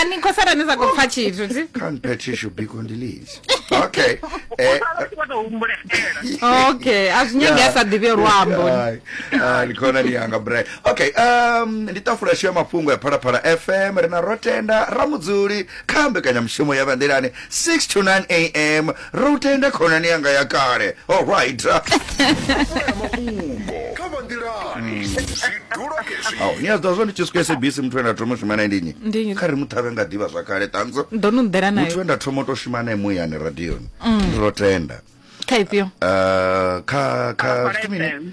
ani khou sala ni sa khou pfa tshithu thi can't bet she should be condoleezed okay eh Sala u tshi vho tou humbuletshela. okay a zwi nyagi a sa ḓivhe luambo Ai, ai, ndi khonani yanga bre okay um ndi tafula shu ya mafhungo ya phalaphala fm ri na rotenda ramudzuli kha mbekanyamushumo ya vhanḓilani 6 to 9 am Ri u tenda khonani yanga ya kale. Oh right. Ṱolela mafhungo kha vha nḓilani zwidulo hezwi Au, ni a zwiḓivha zwa ndi tshi swika SABC muthu we nda thoma u shuma nae ndi nnyi? Ndi nnyi? Kha ri mu ṱhavhe nga ḓivha zwakale ṱanzo. ndo no ḓela Muthu nayo we nda thoma u tou shuma nae muyani radioni. Ndi lwo tenda. kha ifhio Uh, kha kha Phalaphala zwithu mini? FM.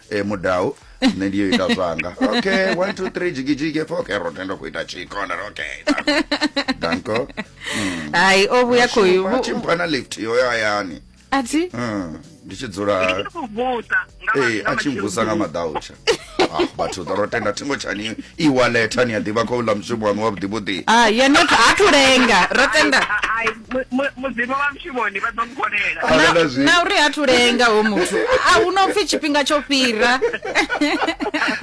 e mudau nṋe ndiyo ita zwanga okay one two three jigijigi efo okay ro tenda ku ita chikona okay danko mm. hai o vhuya khoyu a tshi mpha na lift yo ya hayani a thi mm, ndi tshi dzula ee a tshi mvusa nga madautsha ah, vhathu ḓo ro tenda thingo tshani i waleta ni a ḓivha khou ḽa mushumo waṋu wa vhuḓivhuḓi ah, ha thu lenga ro tenda vhone vha ḓo muvhonela Kana na, na zwi- na uri ha thu lenga ho muthu a hu no pfi tshifhinga tsho fhira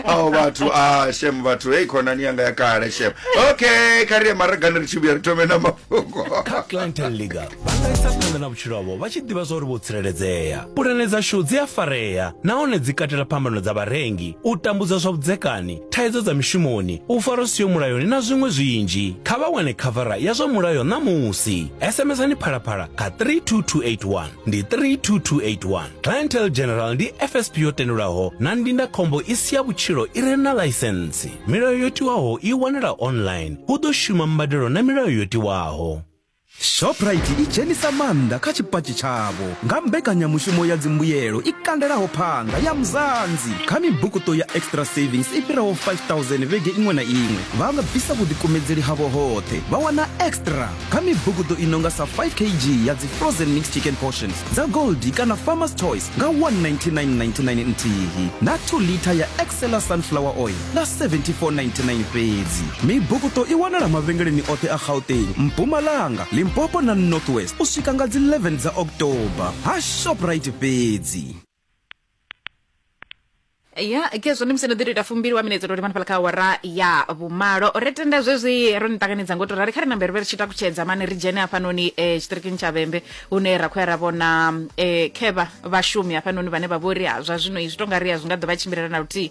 ao vhathu a shem vhathu hei khonani yanga ya kale shem okay kha ri ye maragani ri tshi vhuya ri thome na mafhungo kha clinton league vha nga isa phanḓa na vhutshilo havho vha tshi ḓivha zwa uri vho tsireledzea pulane dzashu dzi a farea nahone dzi katela phambano dza vharengi u tambudza zwa vhudzekani thaidzo dza mishumoni u farwa siyo mulayoni na zwiṅwe zwinzhi kha vha wane khavara ya zwa mulayo ṋamusi smsani phalaphala kha 32281 ndi 32281 clientel general ndi fsp yo tendelwaho na ndindakhombo i si ya vhutshilo i re na ḽaisensi milayo yo tiwaho i wanala online hu ḓo shuma mbadelo na milayo yo tiwaho Shoprite i dzhenisa maanḓa kha tshipatshi tshavho nga mbekanyamushumo ya dzimbuyelo i kandelaho phanḓa ya Mzansi. Kha mibukuṱo ya Extra Savings i fhiraho 5000 vhege iṅwe na iṅwe, vha nga bvisa vhuḓikumedzeli havho hoṱhe vha wana extra kha mibukuṱo i no nga sa 5 kg ya dzi frozen mixed chicken portions dza Goldie kana Farmer's Choice nga 199.99 nthihi na 2 litha ya Excella sunflower oil na 7499 fhedzi mibukuto i wanala mavhengeleni oṱhe a gauteng mpumalanga limpopo na north west u swika nga dzi 11 dza october ha shoprite fhedzi ya khezwo ndi musi no ḓi to ita fumbili wa minetse tori manifhala kha awara ya vhumalo ri tenda zwezwi ro ni ṱanganedza ngo to rali kha ri nambe ri vhe ri tshi takutshedza mani ri dzhene hafhanoni um tshiṱirikini tsha vhembe hune ra khou ya ra vhona um khevha vhashumi hafhanoni vhane vha vho ri ha zwa zwino izwi to nga ri a zwi nga ḓo vha tshimbilela na luthihi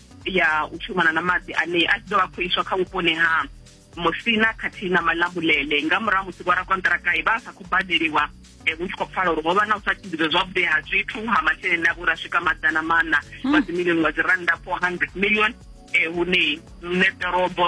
ya u shumana na maḓi ane a tshi ḓo vha khou iswa kha vhuponi ha musina khathihi na malambulele nga murahu musi vhorakonṱirakae vha sa khou badeliwa eh, hu tshi khou pfala uri ho vha na u sa tshimbidzwa zwavhuḓi ha zwithu ha masheleni a vhura swika maḓana maṋa wa dzimilioni wa dzi rannda 400 million um hune nṋe ḓorobo